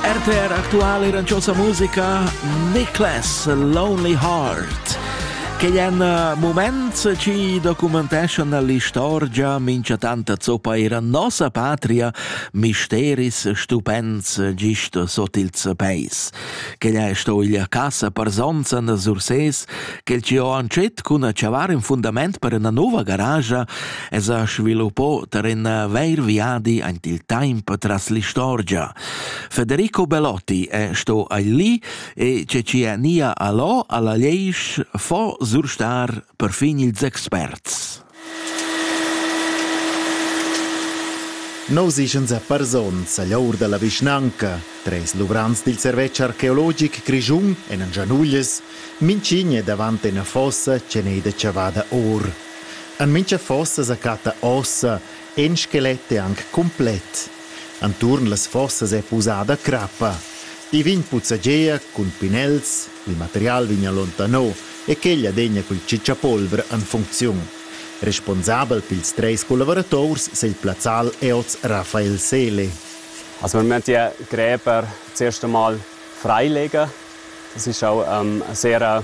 RTR aktual iranchosa musica Nicholas Lonely Heart che è un eh, moment ci documentescia nell'istorgia mincha tanta zoppa era nossa patria misteris stupends gist sot ils peis che è sto il casa per sonzan surses che il ci ho ancet cun a chavar in fundament per una nuova garage es ha sviluppò tar ün vair viadi aint il temp tras l'istorgia. Federico Belotti è sto ai lì e Cecilia Nia Alò alla Leisch fo surstar perfin ils experts. Nousichens e parsons a l'our da la vischnanca, treis luvrants dil servetsch archeologic grischun en Gianuglies, mincign davant ina fossa che n'ei da chavada or. En mintga fossa sa chatta ossa in skelet e anc cumplet. Enturn las fossas è pusada crappa. I vegn puzzagea cun pinels, il material vegn allontano e quel adegna cul cicciapolver en funcziun. Responsabel pils treis collaborators sei il plazzal è oz Rafael Seele. Also wir müssen die Gräber zuerst einmal freilegen. Das ist auch ähm, eine sehr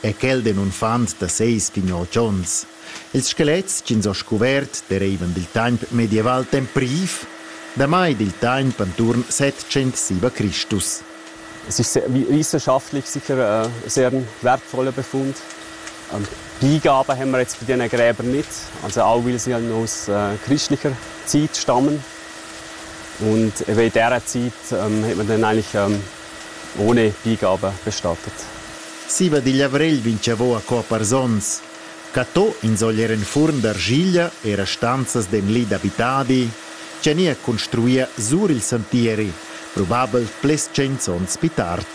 è quel d'in unfant da seis pignol chons. Ils skelets ch'ins ho scuvert dereivan dil temps medieval tempriv, damai dil temps enturn 707 Chr. Es ist wissenschaftlich sicher eine sehr wertvolle Befund. Und die Gabe haben wir jetzt bei diesen Gräbern nicht, also auch weil sie aus äh, christlicher Zeit stammen. Und in dieser Zeit ähm, hat man dann eigentlich ähm, Ohne Pign aber bestattet. Siva digl avrigl vinchavo a cò pars ons. Catò insogl er en furn d'argiglia e rastanzas d'enli d'abitadi, tg'è nia construia sur il santieri, probabel ples tschents ons pi tard.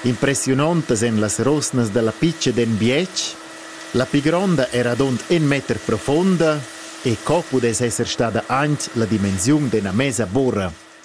Impressiunontas èn las rosnas dalla pitga d'en bietg, la pi gronda era adont en meter profonda e co pudess esser stada anc la dimensiun d'ena mesa bora,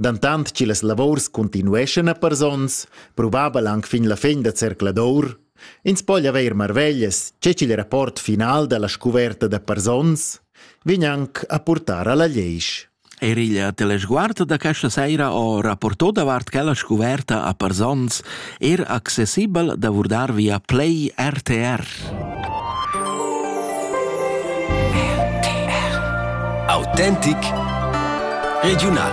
Dantant che las lavurs continueschan a pars onns, probabel anc fin la fin da zercladur, ins po haver marveglias che ch'il rapport final dalla scuverta da pars onns vegn anc a purtar alla leisch. Er il telesguard da questa saira ho rapporto davart quella scuverta a Parzons er accessibel d'avurdar via Play RTR. RTR. Autentic Regional.